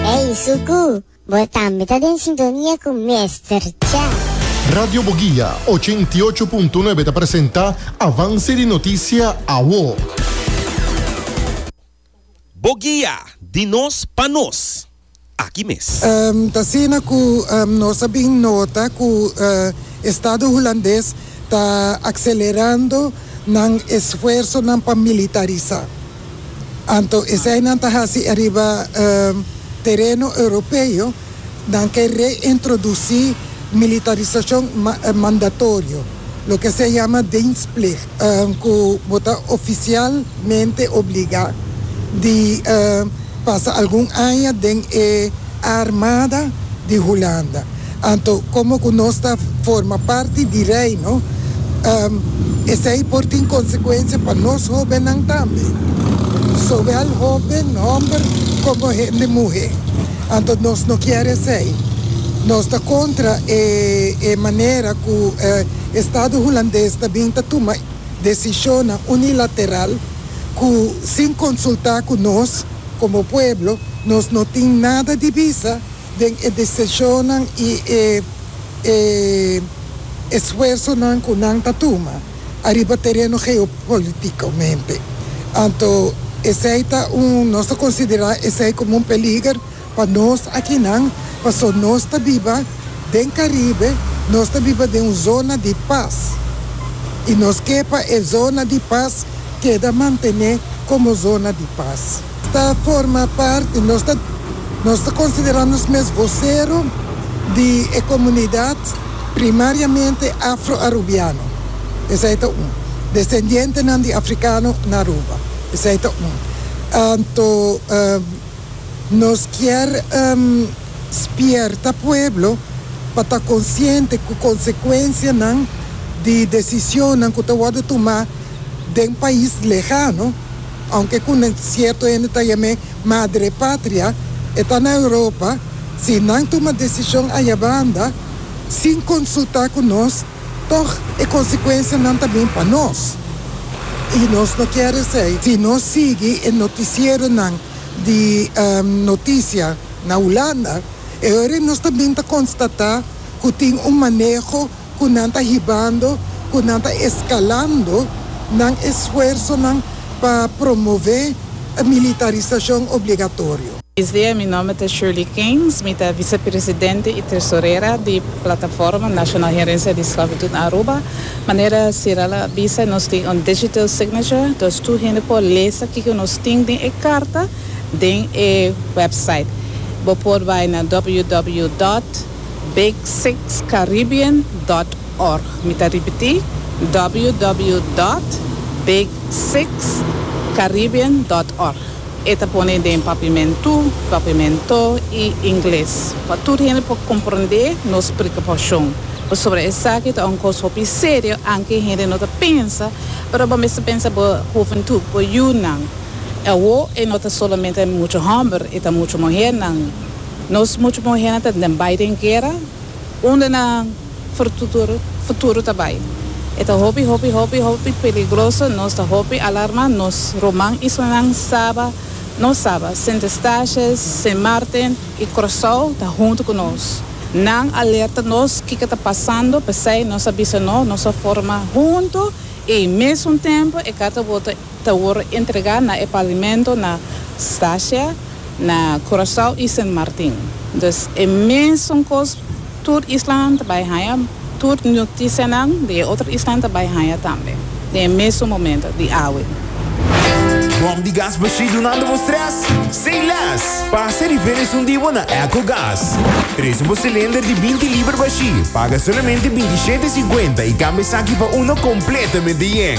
Ey Suku, bo tambe ta den sintonia cu Mester Cha. Radio Boguia ochenta i ocho punto nuebe ta presenta Avance di Noticia Awo. Boguia, di nos pa nos. Aki mes. Ta asina cu nos a bin nota cu Estado Hulandes ta accelerando nan esfuersonan pa militarisa. Anto esei nan ta hasi ariba tereno europeo, nan ke reintrodusi militarisashon mandatorio, loke se yama dienstplicht, ku bo ta ofisialmente obligá di pasa algun aña den e. Armada di Hulanda. Anto komo ku nos ta forma parti di Reino, esei por tin konsekuensia pa nos hóbennan tambe, sowel hóben hòmber komo hende muhé. Anto nos no kier esei. Nos ta kontra e manera ku e estado hulandes ta bin ta tuma desishonnan unilateral ku sin konsultá ku nos. Komo pueblo, nos no tin nada di bisa den e deseshonnan i e e esfuersonan ku nan ta tuma ariba tereno geopolitikomente. Anto esei ta un, nos ta konsiderá esei komo un peliger pa nos akinan, paso nos ta biba den Karibe, nos ta biba den un zona di pas i nos ke pa e zona di pas keda mantené komo zona di pas. Ta forma parti, nos ta nos ta konsiderá nos mes vosero di e komunidat primariamente afro-arubiano, esei ta un, desendientenan di afrikano na Aruba, esei ta un, anto nos kier spierta pueblo pa ta konsiente ku konsekuensianan di desisionnan ku ta wòrdu tumá. den pais lehano, aunke cu nan cierto hende ta yam'e Madre Patria, e ta na Europa, si nan tuma decision ayabanda sin consulta cu nos, tog e consecuencianan ta bin pa nos. Y nos no kier esey. Si nos sigui e noticieronan di noticia na Hulanda, e ora nos ta bin ta constata cu tin un maneho, ku nan ta hibando, ku nan ta eskalando nan esfuersonan pa promové e militarisashon obligatorio. Buen dia, mi nòmber ta Shirley Keynes, mi ta visepresidente i tresorera di Plataforma Nacional Herencia di Sclavitud Aruba. Manera Cirel a bisa nos tin un digital signature, dus tur hende por lesa kiko nos tin den e karta den e website. Bo por bai na www. Big Six Caribbean dot org Mi ta ripití, ww dot big six caribbean dot org E ta pone den papimentú, papimento, i ingles pa tur hende por komprondé nos preokupashon. Pasobra esaki ta un kos hopi serio anke hende no ta pensa, pero bo mester pensa bo hoventú, bo yunan. Awor e no ta solamente mucha hòmber, e ta mucha muhernan. Nos mucho muhernan ta den bai den guera, unda nan futuro ta bai? E ta hopi hopi hopi hopi peligroso, nos ta hopi alarma, nos ruman y sunan saba, no saba, Sint Eustatius, Sint Maarten y Curaçao ta hunto cu nos. Nan alerta nos kico ta pasando, p'esey nos a bisa no, nos a forma hunto y mesun tempo e Carta Voto. ta wor entrega na e paviemento na Sasha, na Curaçao y Sint Maarten. Dus e mesun cos tur islanan ta bay haya, tur noticianan di e otro islanan ta bay haya tambe den e mesun momento di awe. Bom di gas bashí dunando bo stress? Say less! Pasa riba e resun di bo na Echo Gas. Presu bo cilinder di binti liber bashí, paga solamente binti shete e cincuenta y cambia esaki pa uno completamente yen.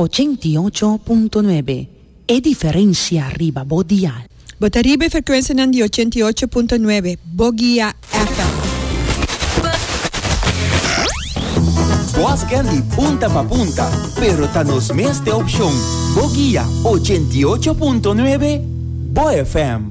Ochenta i ocho punto nuebe, e diferensia riba bo dial. Bo ta riba e frekuensianan di ochenta i ocho punto nuebe, bo guia FM. Boss Candy punta pa punta, pero ta nos mes te opshon, bo guia ochenta i ocho punto nuebe, bo FM.